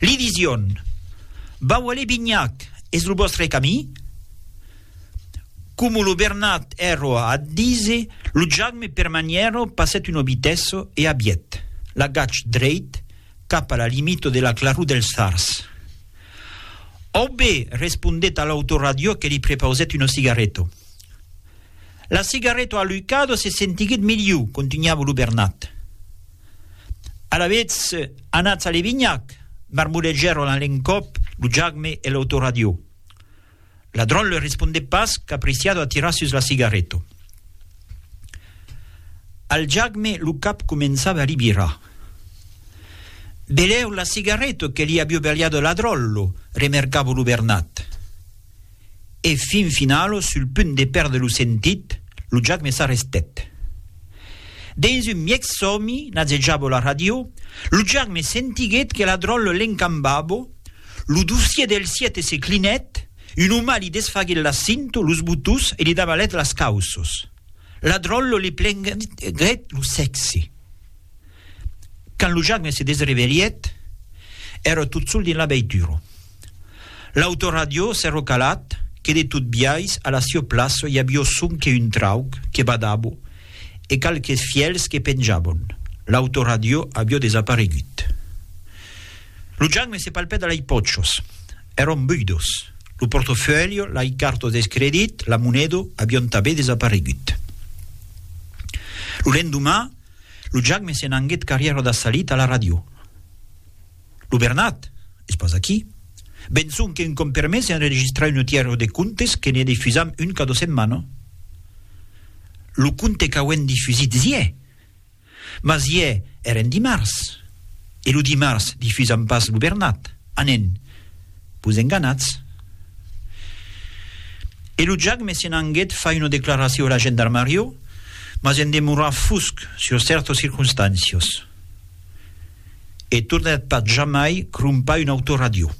Li dision, Vau aller Binhac, es lo vòstre camí? Como lo Bernat èrro a adise, lo Jagme per maniero passèt un obitesso e abiet l'agach dreit cap a la limito de la claror del Sars. Aubé, respondèt a l'autoradiò que li prepausèt uno cigarreto. La cigarreto alucado se sentiguèt miliu, contunhava lo Bernat. Alavetz, anatz a Levinhac! marmolejèron a l'encòp lo Jagme e l'autoradiò. Ladron le respondèt pas qu'apreciado a tirar sus la cigarreta. Al Jagme lo cap començava a li virar. Belèu la cigarreta que li avió beliada Ladron, lo remercava lo Bernat. e fin finalo sul punt de perdre lo sentit, lo Jack me s'arrestèt. Dens un mièg sòmi, n'azejavo la ràdio, lo Jack me sentiguèt que la dròlle l'encambavo, lo dossier del siète se clinèt, un oma li desfaguèt la cinto, los botons e li davalèt las cauços. La dròlle li plenguèt lo sèxe. Quand lo Jagme se desrevelhèt, èra tot sol dins la veitura. L'autoradiò s'èra calat que de tot biais a la siò plaça i avió son que un trauc que badava e qualques fièls que penjavan. L'autoradiò avió desaparegut. Lo Jagme se palpèt a lei pòchas. Èran buidas. Lo portafèlho, lei cartas deth credit, la moneda, avián tanben desaparegut. Lo lendomà, Lo Jagme se n'anguèt qu'arrièra da salit a la ràdio. Lo Bernat, es pas aquí? Ben sonque un còm per mes enregistrar un autièr de contes que ne difusam un cada setmana. Lo conte qu'auem difusit iè! Mas iè èren dimars, e lo dimars difusam pas lo Bernat. Anen. Vos enganatz. E lo jagme se'n anguet far una declaracion a la gendarmarió, mas en demorar fusc sur cèrtos circonstàncios. E tornèt pas jamai crompar un autoradió.